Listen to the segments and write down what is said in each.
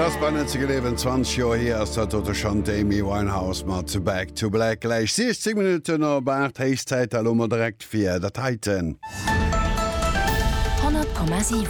Et ass bannent ze gleewen, 20 Joer hier ass dat dote schonn, d'Amy Winehouse mat Back to Black. Gläich 16 Minutten op 8, héich Zäit elo mol direkt fir dat heiten. 100,7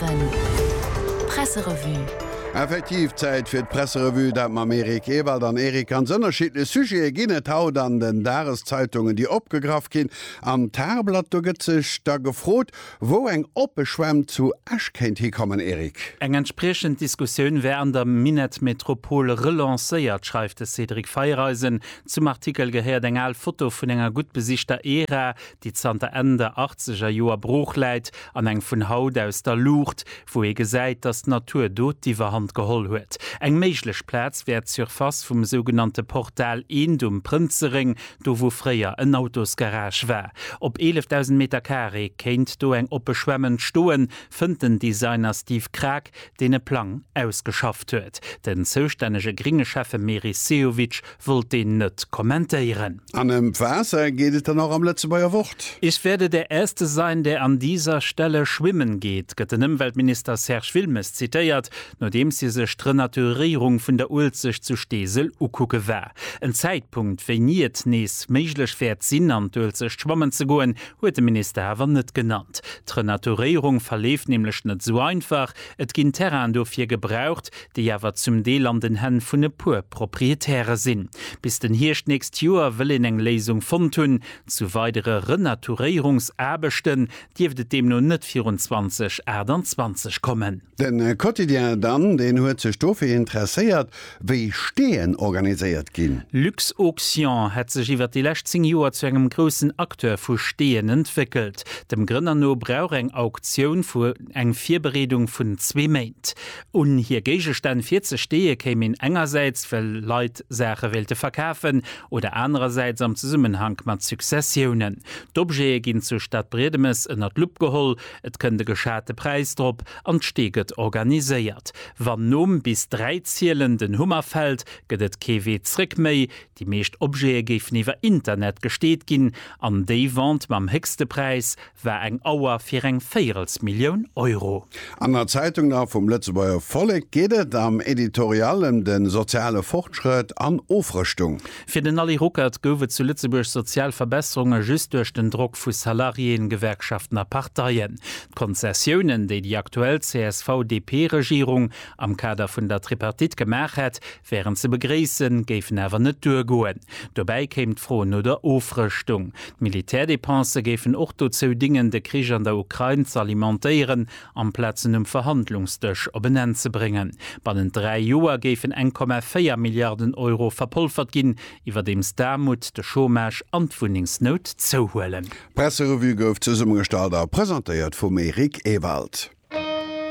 Presserevue. Effektiv Zäit fir d'Presserevue, dat mam Eric Ewald an Eric. Ganz ënnerschiddlech Sujete ginn et haut an den Dageszeitungen, déi opgegraff ginn. Am Tageblatt, do gëtt sech da gefrot, Wou eng oppe Schwämm zu Esch kéint hikommen, Eric? Eng entspriechend Diskussioun wär an der Minett-Metropol relancéiert, schreift de Cédric Feiereisen. Zum Artikel gehéiert eng al Foto vun enger gutt besichter Era, déi zanter Enn der achtzeger Joer brooch läit, an eng vun haut aus der Luucht, wou ee gesäit, datt d'Natur do d'Iwwerhand geholl huet. Eng méiglech Plaz wär d'Surface vum sougenannte Portal Eend um Prënzeréng, Do wou fréier en Autosgarage war, op 11.000 Meter Carré, kéint do eng oppe Schwämm entstoen, fënnt den Designer Steve Krag, deen e Plang ausgeschafft huet. Den zoustännege gringe Schäffe Meris Sehovic wollt deen net kommentéieren. An ëm d'Waasser geet et dann och am Lëtzebuerger Wort. Ich werde der Erste sein, der an dieser Stelle schwimmen geht, gëtt den Ëmweltminister Serge Wilmes zitéiert. nodeems hie sech d'Renaturéierung vun der Uelzecht zu Steesel ukucke war. En Zäitpunkt, wéini et nees méiglech wäert sinn, an d'Uelzecht schwammen ze goen, huet de Minister awer net genannt. D'Renaturéierung verleeft nämlech net esou einfach. Et ginn Terrainen dofir gebraucht, déi awer zum Deel an den Hänn vun e puer Proprietäre sinn. Bis den Hierscht d'nächst Joer wëll een eng Léisung fonnt hunn. Zu weidere Renaturéierungsaarbechten, dierft et deemno net virun 2028 kommen. De Quotidien dann, deen huet sech dofir interesséiert, wéi Steeën organiséiert ginn. Luxauction hätt sech iwwer déi lescht 10 Joer zu engem groussen Acteur vu Steeën entwéckelt. Dem Grënner no brauch eng Auktioun vu eng Virbereedung vun zwee Méint. Un hir Géigestänn virzesteeë kéim een engersäits, well Leit Saache wéilte verkafen, oder anerersäits am Zesummenhank mat Successiounen. D'Objete ginn zu Stadbriedemes ënner d'Lupp geholl, et kënnt e geschate Präis drop an d'Stee gëtt organiséiert. Wann nom bis dräi zielen den Hummer fält, gëtt et kee Wee zréck méi. Déi meescht Objete géifen iwwer Internet gesteet ginn an déi Vente mam héchste Präis war eng Auer fir eng Véirelsmillioun Euro. An der Zeitung da vum Lëtzebuerger Vollek geet et am Editorial ëm de soziale Fortschrëtt an Ofrëschtung. Fir den Ally Ruckert gouf et zu Lëtzebuerg sozial Verbesserunge just duerch den Drock vu Salariéen, Gewerkschaften a Parteien. D'Konzessiounen, déi déi aktuell CSV-DP-Regierung am Kader vun der Tripartite gemaach hätt, wären ze begréissen, géifen awer net duergoen. Dobäi kéim d'Fro no der Ofrëschtung. D'Militärdepensë géifen och dozou dingen, de Krich an der Ukrain z'alimentéieren, amplaz en um Verhandlungsdësch op en Enn ze bréngen. Bannent dräi Joer géifen eng Komma véier Milliarden Euro verpolfert ginn, iwwerdeems d'Aarmut, de Chômage an d'Wunnengsnout zouhuelen. D'Presserevue gouf zesummegestallt a presentéiert vum Eric Ewald.